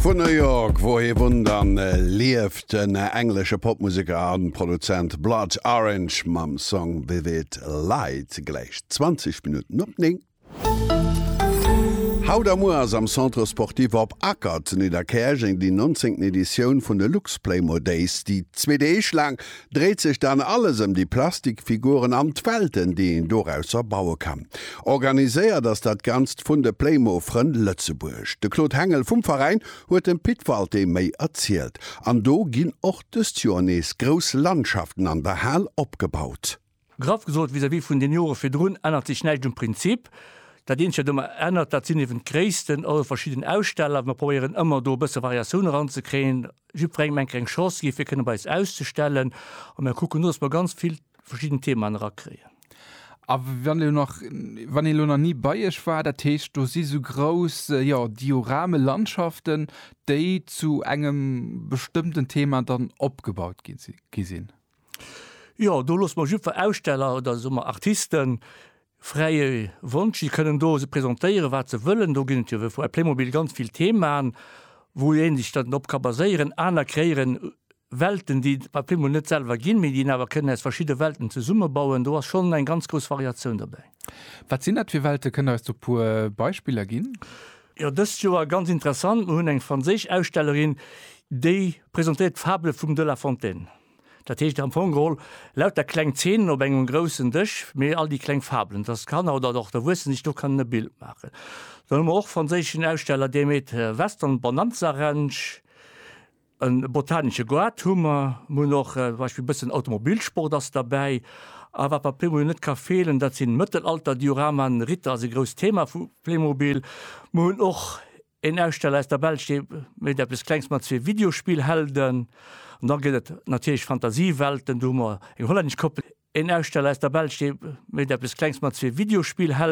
Vun New York, wou hie wunnt an lieft, den englesche Popmuseker a Produzent Blood Orange mam Song Vivid Light, gläich 20 Minutten op 9. Haut a muer ass am Centre Sportif Op Acker zu Nidderkäerjeng déi 19. Editioun vun de Luxplaymo Days, déi zwee Deeg laang dréit sech dann alles ëm déi Plastikfiguren an d'Welten, déi een dorausser baue kann. Organiséiert ass dat Ganzt vun de Playmo-Frënn Lëtzebuerg. De Claude Hengel vum Veräin huet dem Pit Walté méi erzielt. An do ginn och dëst Joer nees grouss Landschaften an der Hal opgebaut. Graff gesot, vis-à-vis vun den Jore virdrun ännert sech näischt um Prinzip. Dat eenzegt, wat ëmmer ännert, dat sinn eeben d'Gréissten. Also verschidden Aussteller, mir probéieren ëmmer do e bësse Variatioun eranzekréien, jiddwerengem eng kleng Chance ginn, fir kënne bei eis auszestellen. A mir kucken do, dass mer ganz vill verschidden Themaen erakréien. A wann elo nach, wann een elo nach ni bei iech war, dat heescht do si sou grouss, jo, Diorame-Landschaften, déi zu engem bestëmmten Thema dann opgebaut gi sinn? Jo, do loosse mer jidfer Aussteller oder soe mer Artiste fräie Wonsch. Si kënnen do se presentéieren, wat se wëllen. Do ginn et jo wéi vu Playmobil ganz vill Themaen, wou ee sech dann drop ka baséieren. Aner kréieren Welten, déi et bei Playmobil net selwer ginn, mee déi een awer kënnen aus verschidde Welten zesummebauen. Do ass schonn eng ganz grouss Variatioun dobäi. Wat sinn dat fir Welte? Kënnt Der eis do e puer Beispiller ginn? Jo, dëst Joer ganz interessant, Mir hunn eng franséisch Ausstellerin, déi presentéiert d'Fable vum de La Fontaine. Dat heescht am Fong geholl lauter kleng Zeenen op engem groussen Dësch, mee all déi kleng Fabelen, dass d'Kanner oder och d'Erwuessen sech do kënnen e Bild maachen. Dann hu mer och franséischen Aussteller, dee méet Western Bonanza Ranch. E botanesche Goart hu mer, mer hunn och zum Beispill e bëssen Automobilsport ass derbäi. A wat bei Playmobil net ka feelen, dat sinn Mëttelalter-Dioramaen. Ritter ass e grousst Thema vu Playmobil. Mer hunn och een Aussteller aus der Belsch, dee mécht eppes Klengs mat zwee Videospill-Helden. An da gëtt et natierlech Fantasiewelten, do hu mer eng hollännesch Koppel. Een Aussteller aus der Belsch, dee mécht eppes Klengs mat zwee Videospill-Helden.